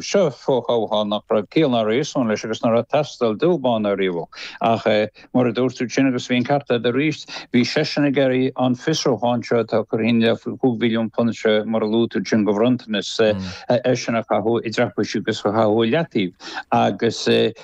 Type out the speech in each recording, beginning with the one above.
Seo fo-thoghchán nach raibh ciall ná réasún leis agus nár theastail dubh bán ariamh. Ach mar a dúirt tú sin agus bhí an ceart a'd aríst, bhí seisean ag iarraidh an fiosrúchán seo atá curtha faoi féin faoi chúig mhilliún punt seo mar a luaigh tú sin de bhronntanas air sin a chaitheamh i dtraipisí agus a chaitheamh i leataoibh. Agus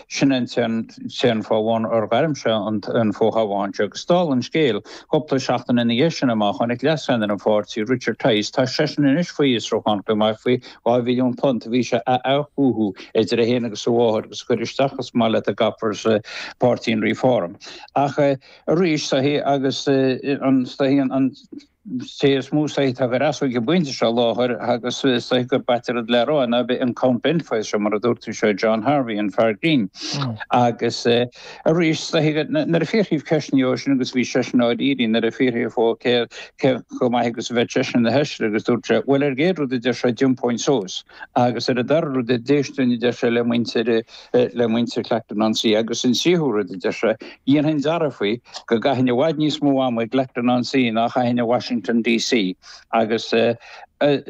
sin an t-aon fáth amháin ar ghairm sé an fo-thoghchán seo. Agus dála an scéil, cúpla seachtain ina dhiaidh sin amach tháinig Leas-Cheannaire an Pháirtí, Richard Tice, tá seisean anois faoi fhiosrúchán chomh maith faoi Dhá mhilliún punt a bhí sé a athchothú idir é féin agus a mháthair agus a chur isteach más maith leat go gcaithfear sa pháirtí in Reform. Ach arís sílim agus sílim an té is mó sílim atá ag an fhreasúra ag an bpointe seo i láthair agus sílim gur b'ait ar an dlea rá ná a bheith in Count Binface seo mar a dúirt tú seo John Harvey an fear grinn agus Arís, nuair a fiafraíodh ceist de siúd sin, agus bhí seisean dáiríre, nuair a fiafraíodh de cé chomh maith agus a bheadh seisean ina Fheisire, agus dúirt sé, Bhuel ar an gcéad rud a deir sé thiompóinn suas, agus ar an dara rud d'éistfinn a deir sé le muintir, le muintir Clacton on Sea, agus an tríú rud a deir sé, dhéanfainn dearfa faoi, go gcaithfinn i bhfad níos mó ama i gClacton on Sea ná a chaithfinn i Washington D.C. Agus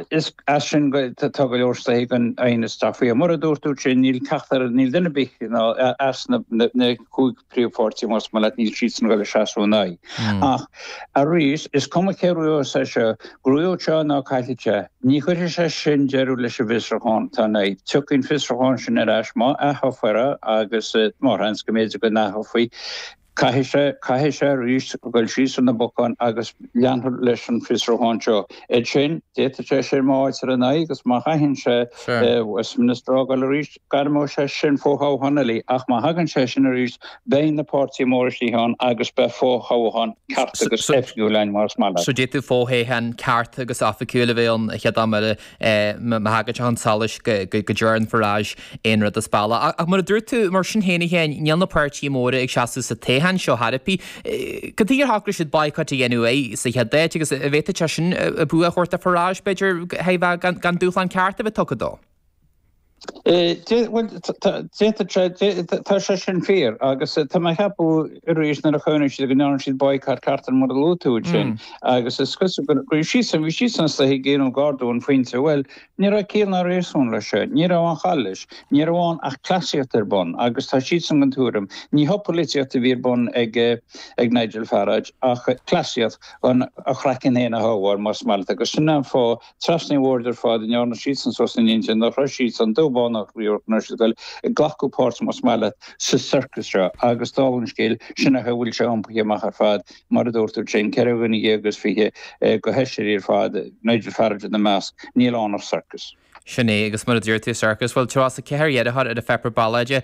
is as sin go, tá go leor istigh anois ag magadh faoi. Mar a dúirt tú sin, níl ceachtar, níl duine ar bith as na na cúig phríomhpháirtí más maith leat, níl siadsan ag goil ag seasamh ina aghaidh. Ach arís, is cuma cé acu sé seo, gnóthóidh sé nó caillfidh sé. Ní chuirfidh sé sin deireadh leis an bhfiosrúchán atá ina aghaidh. Tiocfaidh an fiosrúchán sin ar ais má atoghfar é agus maith an seans go mb'fhéidir go n-atoghfaí. Caithfidh sé, caithfidh sé arís dul síos ar na bocáin agus leanfar leis an bhfiosrúchán seo. Ansin, d'fhéadfadh sé sin má fhaightear ina aghaidh agus má chaitheann sé Westminster a fhágáil arís, gairmeoidh sé sin fo-thoghchán eile. Ach má thagann sé sin arís, beidh na páirtithe móra istigh ann agus beidh fo-thoghchán ceart agus oifigiúil ann más maith leat. So d'fhéadfadh fo-thoghchán ceart agus oifigiúil a bheith ann an chéad am eile. má thagann sé chun solais go ndearna Farage aon rud as bealach. Ach mar a dúirt tú, mar sin féin a Sheáin, níl na páirtithe móra ag seasamh sa toghchán seo ar bith. Cad tuige ar shocraigh siad boycott a dhéanamh air sa chéad áit agus an bhféadfadh sé sin bua a thabhairt do Farage, b'fhéidir, gan dúshlán ceart a bheith tugtha dó? D'fhéadfadh tá sé sin fíor agus tá mé ag ceapadh arís nuair a chonaic siad go ndearna siad baghcat air mar a luaigh tú ansin agus is cosúil go raibh siadsan, bhí siadsan ag suí ag déanamh gar don phointe. Bhuel, ní raibh ciall ná réasún leis sin, ní raibh aon chall leis, ní raibh ann ach cleasaíocht ar bun agus tá siadsan den tuairim, ní haon pholaitíocht a bhí ar bun ag Nigel Farage ach cleasaíocht chun a chraiceann féin a shábháil más maith leat agus sin an fáth Trasna an bhoird ar fad go ndearna siadsan suas a n-intinn nach raibh siadsan, dubh, bán ná riabhach nach raibh siad ag dul ag glacadh páirt más maith leat sa circus seo. Agus dála an scéil, sin é an chaoi a bhfuil sé iompaithe amach ar fad, mar a dúirt tú, féin, ceithre dhuine dhéag is fiche d'aisteoirí ar fad, Nigel Farage ina measc, níl ann ach circus. Sin é, agus mar a dúirt tú, circus. Bhuel, tríocha is a ceathair iarrthóir ar an pháipéar ballóide,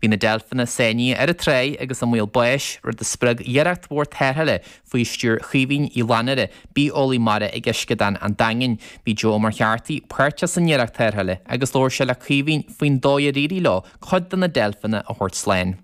Bhí na deilfeanna sáinnithe ar an tráigh agus i mbaol báis, rud a spreag iarracht mhór tarrthála faoi stiúir Chaoimhín Uí Fhlannúra, bitheolaí mara ag Uisceadán an Daingin. Bhí Joe Ó Muircheartaigh páirteach san iarracht tarrthála agus labhair sé le Caoimhín faoin dóigh ar éirigh leo cuid de na deilfeanna a thabhairt slán.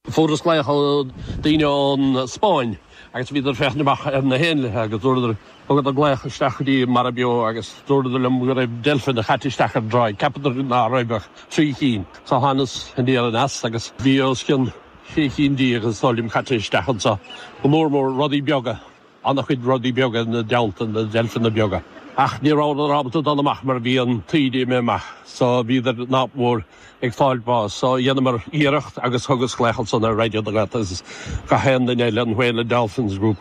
Fuaireas glaoch, daoine ón Spáinn, agus bhíodar ag féachaint amach ar na héanlaithe agus dúradar, Thugadar glaoch isteach go dtí Mara Beo agus dúradar liom go raibh deilfeanna caite isteach ar an dtráigh. Cheapadar ná raibh ach trí chinn. So thánas aniar aneas agus bhí os cionn sé chinn déag is dóigh liom caite isteach anso. Go mór mór rudaí beaga. Ana-chuid rudaí beaga ina dteannta, na deilfeanna beaga. Ach ní rabhadar ábalta dul amach mar bhí an taoide imithe amach. So bhíodar nach mór ag fáil bás. So dheineamar iarracht agus thugas glaoch ansan ar Raidió na Gaeltachta agus gach aon duine eile, an Whale and Dolphins Group.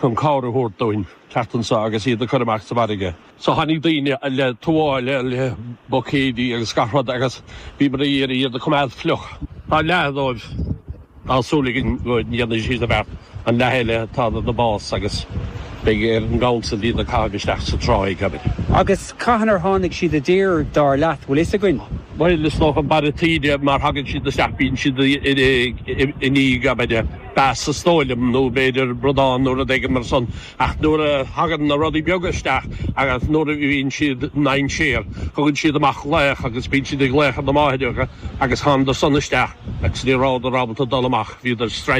chun cabhair a thabhairt dúinn teacht annso agus iad a cur amach sa bhfairrge. So tháinig daoine le tuáille, le buicéidí agus gach rud agus bhíomar a d'iarraidh iad a coimeád fliuch. Tá leath dóibh tá súil againn go ndéanfaidh siad an bheart, an leath eile tá na bás agus beidh ar an gCouncil iad a caitheamh isteach sa tráigh, abair. Agus cathain ar tháinig siad i dtír dar leat, bhfuil fhios againn? Bhuel, is dócha an barra taoide mar thagann siad isteach bíonn siad i ndiaidh, abair. bass is dóigh liom, nó b'fhéidir bradán nó rud éigin mar san. Ach nuair a thagann na rudaí beaga isteach agus nuair a bhíonn siad i ndainséar, thugann siad amach glaoch agus bíonn siad ag glaoch ar na máithreacha agus thánadar san isteach agus ní rabhadar ábalta dul amach, bhíodar stranded.